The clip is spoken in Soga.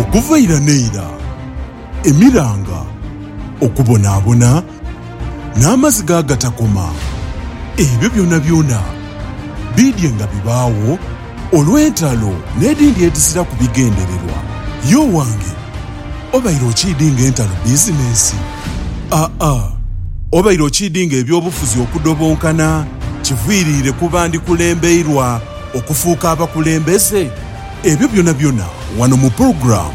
Okuva ira n'eira, emiranga, okubonaabona, n'amaziga agatakoma, ebyo byonabyona biidye nga bibaagho, Olw'entalo n'edhindi edhiziraku bigendererwa, ye owange obaire okiidinga entalo bizinensi? Aa, obaire okiidinga eby'obufuzi okudobonkana kiviiriire ku bandikulembeirwa okufuuka abakulembeze? Ebyo byonabyona wano mu pulogulaamu.